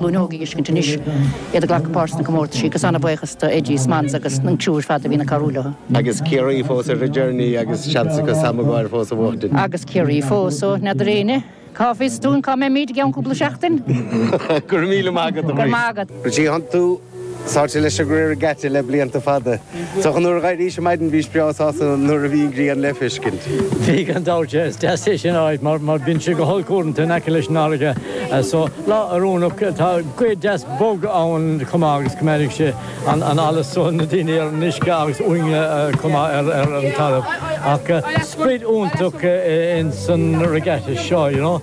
óg a fheiscint anois, iad ag glacadh páirt sna comórtaisí, agus an-bhuíochas do Eddie Smanns agus an tiúb fada a bhí ina carúil orthu. Agus Ciarraí fós ar a journey agus seans acu Sam Maguire fós a bhuachtaint. Agus Ciarraí fós, ó, n'fheadar éinne, cá bhfios dúinn cá mbeimid i gceann cúpla seachtain? Go raibh míle maith agat, a Mhaurice. Go raibh maith agat. Go dtí iontu. Tarraingthe leis an regatta le blianta fada. Is dócha nuair a dh'éirís a maidin bhís breá sásta nuair a bhí an ghrian le feiscint. Bhí gan dabht. Is deas é sin a fháil mar bíonn sé go holc uaireanta in aice leis an fharraige. So, lá oiriúnach. Tá gaoth deas bog ann chomh maith agus coimeádfaidh sé an allas so na daoine ar an uisce agus uainne chomh maith ar an talamh. Ach sprid iontach ins an regatta seo, you know.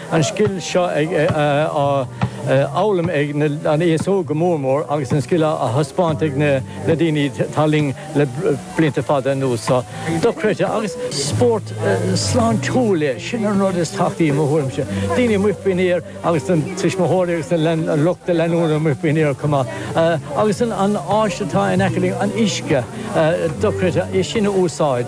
an scil seo á fhoghlaim ag an aos óg go mór mór agus an scil á thaispeáint ag na daoine atá linn le blianta fada anuas. Dochreidte. Agus. spórt sláintiúil é. Sin an rud is tábhachtaí i mo thuairimse. Daoine amuigh faoin aer agus na tuismitheoirí agus lucht leanúna amuigh faoin aer chomh maith. Agus an áis atá in aice linn, an uisce, dochreidte é sin a úsáid.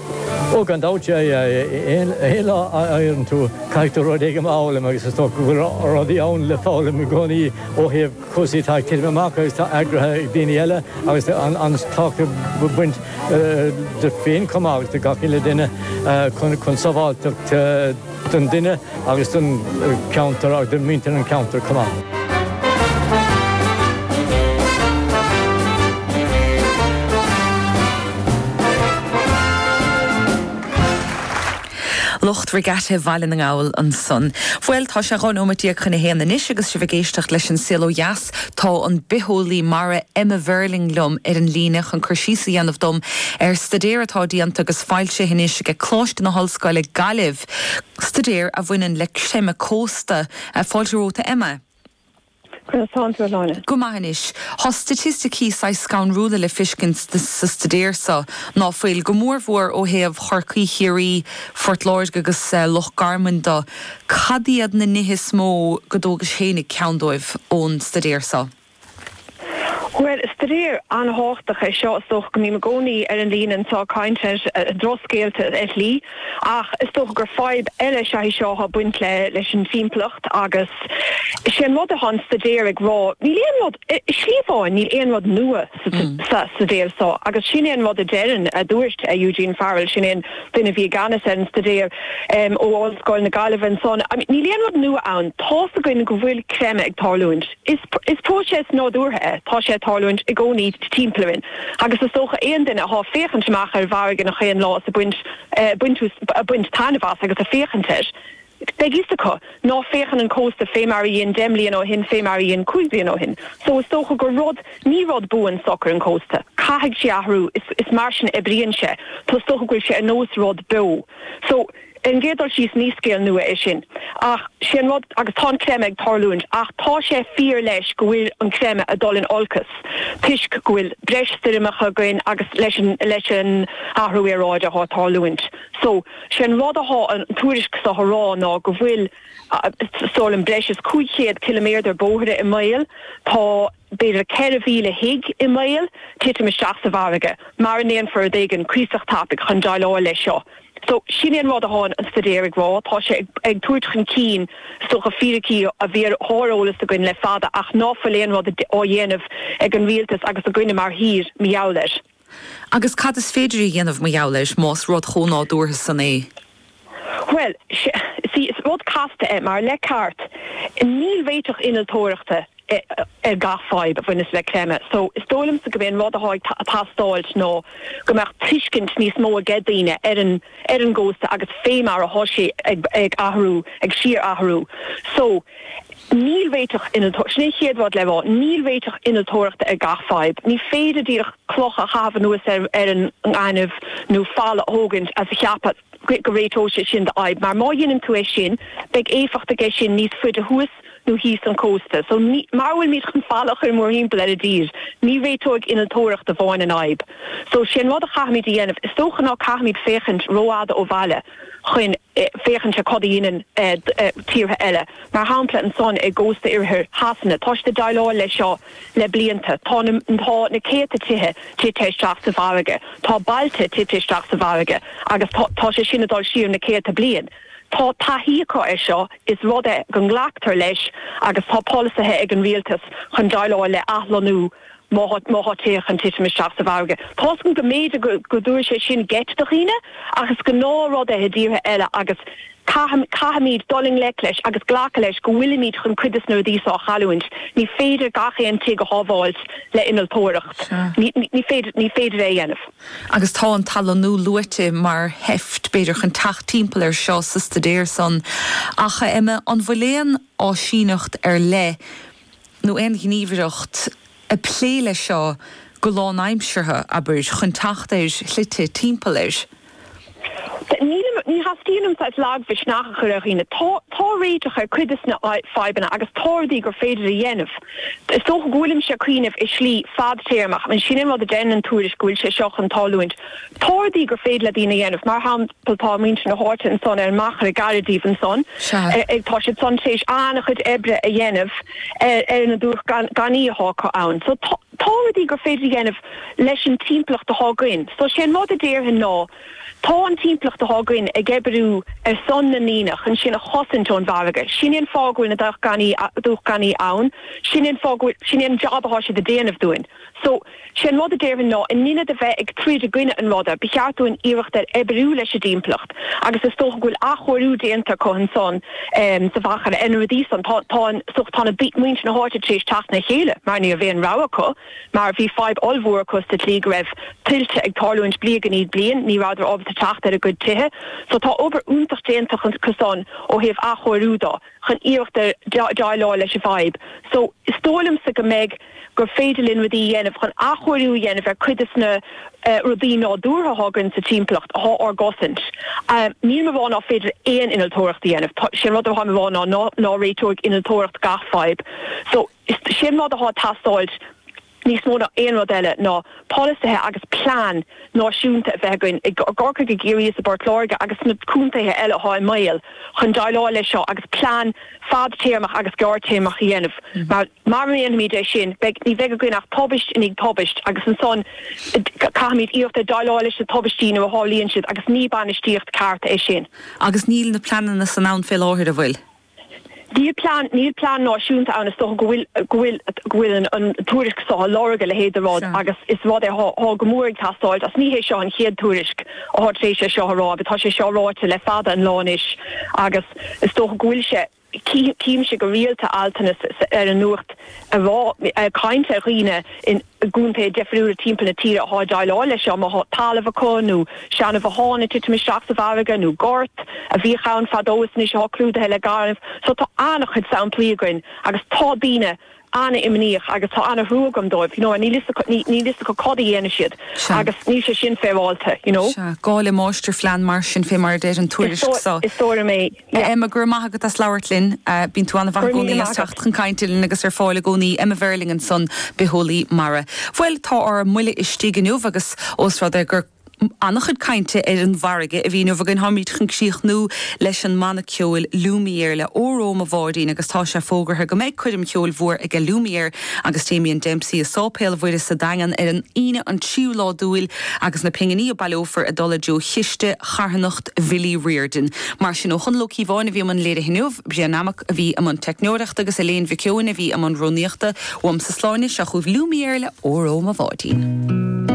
Ó, gan dabht, aon lá a éiríonn tú, caithfidh tú rud éigin a fhoghlaim agus is dócha go bhfuil rudaí ann le foghlaim i gcónaí ó thaobh cúrsaí atá ag titim amach agus atá eagraithe ag daoine eile agus an taca a bhaint duit féin chomh maith agus do gach uile duine chun sábháilteacht don duine agus don cheantar agus do mhuintir an cheantair chomh maith. Lucht Regatta Bhaile na nGall ansan. Bhuel, tá sé dhá nóimeat déag chun a haon anois agus sibh ag éisteacht leis An Saol Ó Dheas, Tá an bitheolaí mara Emma Verling liom ar an líne chun cur síos a dhéanamh dom ar staidéar atá déanta agus foilsithe anois aige Coláiste na hOllscoile, Gaillimh, staidéar a bhaineann le creimeadh cósta. Fáilte romhat, a Emma. Conas atá tú, a Shláine? Go maith anois. Tá staitisticí saghas scanrúla le fiscint sa staidéar so, ná fuil? Go mór mhór ó thaobh Chorcaí, Chiarraí, Phort Láirge agus Loch Garman dó. Cad iad na nithe is mó go dtógais féinig ceann dóibh ón staidéar seo? Bhuel, staidéar an-thábhachtach é seo. Is dócha go mbím i gcónaí ar an líne anseo ag caint ar dhrochscéalta ar shlí, ach is dócha gur fadhb eile is ea í seo atá ag baint leis an timpeallacht agus is é an rud atá an staidéar ag rá, níl aon rud, i slí amháin, níl aon rud nua. sa staidéar so, agus sin é an rud a deireann, a dúirt, Eugene Farrell, sin é an duine a bhí i gceannas ar an staidéar ó Ollscoil na Gaillimhe ansan. I mean, níl aon rud nua ann, tá's againn go bhfuil creimeadh ag tarlúint. Is, is próiseas nádúrtha é, tá sé ag tarlúint i gcónaí timpeall orainn, agus is dócha aon duine athá ag féachaint amach ar an bhfarraige an chaon lá is ag baint, ag baint, ag baint taitneamh as agus ag féachaint air, Beidh fhios acu ná féachann an cósta fé mar a dhein deich mbliana ó shin fé mar a dhein cúig bliana ó shin. So is dócha gur rud, ní rud buan, socair an cósta. Caithfidh sé athrú. Is, is mar sin a oibríonn sé. So is dócha go bhfuil sé ar nós rud beo. So, ar an gcéad dul síos ní scéal nua é sin. Ach, sé an rud, agus tá an creimeadh ag tarlúint, ach tá sé fíor leis go bhfuil an creimeadh a dul in olcas toisc go bhfuil breis stoirmeacha againn agus leis an, leis an athrú aeráide atá ag tarlúint. So. Sé an rud athá an tuairisc so a rá ná go bhfuil, stóir liom, breis is 500 ciliméadar bóithre i mbaol, tá b'fhéidir 4,000 tigh i mbaol titim isteach sa bhfarraige, mara ndéanfar rud éigin cuíosach tapaidh chun déileáil leis seo. So, sin é an rud athá an staidéar ag rá, tá sé ag tabhairt chun cinn, is dócha, fíricí a bhí ar sháreolas againn le fada ach ná fuil aon rud á dhéanamh ag an rialtas agus againne mar thír, mar gheall air. Agus cad is féidir a dhéanamh mar gheall air, más rud chomh nádúrtha san é? Bhuel, sea, is rud casta é, mar le ceart, níl réiteach innealtóireachta ar gach fadhb a bhaineas le creimeadh, so is dóigh liomsa gurb é an rud atá ag teastáilt ná go mbeadh tuiscint níos mó aige daoine ar an ar an gcósta agus fé mar atá sé ag athrú, ag síor-athrú. So, níl réiteach innealtóireachta, sin é an chéad rud le rá, níl réiteach innealtóireachta ar gach fadhb. Ní féidir díreach cloch a chaitheamh anuas ar an ngaineamh nó falla a thógaint is a cheapadh go réiteoidh sé sin do fhadhb, mar má dheineann tú é sin, beidh éifeacht aige sin níos faide thuas nó thíos an cósta. So, mara bhfuil muid chun falla a chur mórthimpeall ar an dtír, ní réiteoidh innealtóireacht amháin an fhadhb. So, sé an rud a chaithfimid a dhéanamh, is dócha, ná ní chaithfimid féachaint ró-fhada ó bhaile chun féachaint ar cad a dheineann tíortha eile. Mar shampla, ansan i gcósta oirthir Shasana, tá siad ag deighleáil leis seo le blianta. Tá na céadta tithe tite isteach sa bhfarraige. Tá bailte tite isteach sa bhfarraige. Agus tá sé sin ag dul siar na céadta bliain. Tá taithí acu air seo, is rud é go nglactar leis agus tá polasaithe ag an rialtas chun déileáil le athlonnú má tá tithe chun titim isteach sa bhfarraige. Tá a fhios agam go mb'fhéidir go dtabharfaidh sé sin geit do dhaoine ach is gnáth rud é i dtíortha eile agus caithfimid dul i ngleic leis agus glacadh leis go bhfuilimid chun cuid de na rudaí seo a chailliúint. Ní féidir gach aon tigh a shábháilt le innealtóireacht. Ní féidir é a dhéanamh. agus tá an t-athlonnú luaite mar sheift, b'fhéidir, chun teacht timpeall air seo sa staidéar san. Ach, a Emma, an bhfuil aon áisíneacht ar leith, nó aon ghníomhaireacht, ag plé leis seo go lánaimseartha, abair, chun teacht ar shlite timpeall air? Nílim, ní theastaíonn uaim saghas lagmhisneach a chur ar dhaoine. Tá, tá réiteach ar cuid des na fadhbanna agus tá rudaí gur féidir a dhéanamh. Is dócha go bhfuilimse ag cuimhneamh i slí fadtéarmach, an sin an rud a deireann an tuairisc, go bhfuil sé seo chun tárlúint? Tá rudaí gur féidir le daoine a dhéanamh, mar shampla tá muintir na háite ansan ar an Machaire, gairid díbh ansan, ag, tá siad san tar éis an-chuid oibre a dhéanamh ar na dumhchanna atá acu ann. So tá. Tá rudaí gur féidir a dhéanamh leis an timpeallacht atá againn. So sé an rud a déarfainn ná, tá an timpeallacht atá againn ag oibriú ar son na ndaoine chun sinn a chosaint ón bhfarraige. Sin é an fáth go bhfuil na dumhchannaí ann, sin é an fáth go bhfuil, sin é an jab atá siad a déanamh dúinn. So sé an rud a déarfainn ná, in ionad a bheith ag troid i gcoinne an ruda, ba cheart dúinn iarracht ar oibriú leis an dtimpeallacht. agus is dócha go bhfuil athchóiriú déanta acu ansan sa Mhachaire ar na rudaí san. Tá, tá an, so tá na daoine, muintir na háite tar éis teacht le chéile mar ní raibh aon rogha acu mar bhí fadhb ollmhór acu sa tslí go raibh tuilte ag tarlúint bliain i ndiaidh bliain, ní rabhadar ábalta teacht ar a gcuid tithe. So tá obair iontach déanta acu san ó thaobh athchóiriú do. chun iarracht a déileáil leis an bhfadhb. So, is dóigh liomsa go mbeidh, gur féidir linn rudaí a dhéanamh chun athchóiriú a dhéanamh ar cuid de na rudaí nádúrtha atá againn sa timpeallacht, atá ár gcosaint. Nílim a rá nach féidir aon innealtóireacht a dhéanamh, tá, sé an rud atáim a rá ná, ná réiteoidh innealtóireacht gach fadhb. So, is, sé an rud atá ag teastáilt, níos mó ná aon rud eile, ná polasaithe agus plean náisiúnta a bheith againn, i gCorcaigh, i gCiarraí is i bPort Láirge agus sna contaetha eile atá i mbaol, chun déileáil leis seo agus plean fadtéarmach agus gearrtéarmach a dhéanamh. Mar mara ndéanfaimid é sin, beidh, ní bheidh againn ach tubaist i ndiaidh tubaist agus ansan caithfimid iarracht a déileáil leis na tubaistí nuair a tharlaíonn siad agus ní bainistíocht ceart é sin. Agus níl na pleananna san ann fé láthair, an bhfuil? Níl plean, níl plean náisiúnta ann. Is dócha go bhfuil, go bhfuil, go bhfuil an, an tuairisc so á lorg, a leithéid de rud, agus is rud é atá, atá go mór ag teastáil, is ní hé seo an chéad tuairisc atá tar éis é seo a rá, agus tá sé seo ráite le fada an lá anois, agus is dócha go bhfuil sé, cím, címse go rialta altanna sa, sa, ar an nuacht a rá, ag caint ar dhaoine in. i gcontaetha difriúla timpeall na tíre atá ag déileáil leis seo, má tá talamh acu nó seanbhothán ag titim isteach sa bhfarraige nó gort a bhíodh ann fadó is anois atá clúdaithe le gaineamh. So tá an-chuid samplaí againn agus tá daoine an-imníoch agus tá an-thrua agam dóibh, you know, níl a fhios acu, níl a fhios acu cad a dhéanfaidh siad agus níl sé sin féaráilte, you know. Sea, gá le máistirphlean mar sin, fé mar a deir an tuairisc so. Is dóigh liom é. Hi Emma, go raibh maith agat as labhairt linn. Bíonn tú an-mhaith i gcónaí as teacht chun cainte linn agus ar fáil i gcónaí. Emma Verling ansan, bitheolaí mara. Bhuel, tá ár mbuille istigh inniu agus ós rud é gur an-chuid cainte ar an bhfarraige a bhí inniu againn, táimid chun críochnú leis an mbanna ceoil Lumiere le Óró Mo Bháidín agus tá sé fógartha go mbeidh coirm cheoil mhór aige Lumiere agus Damien Dempsey i Sáipéal Mhuire sa Daingean ar an Aoine an 3ú lá d'Iúil agus na pinginí a baileofar ag dul i dtreo chiste charthanacht Bhilly Riordan. Mar sin, ó Chonall Ó Cíobháin a bhí i mbun léirithe inniu, Brian Nammock a bhí i mbun teicneoireachta agus Elaine Mhic Eoin a bhí i mbun rúnaíochta. Uaimse Sláine, seo chugaibh Lumiere le Óró Mo Bháidín.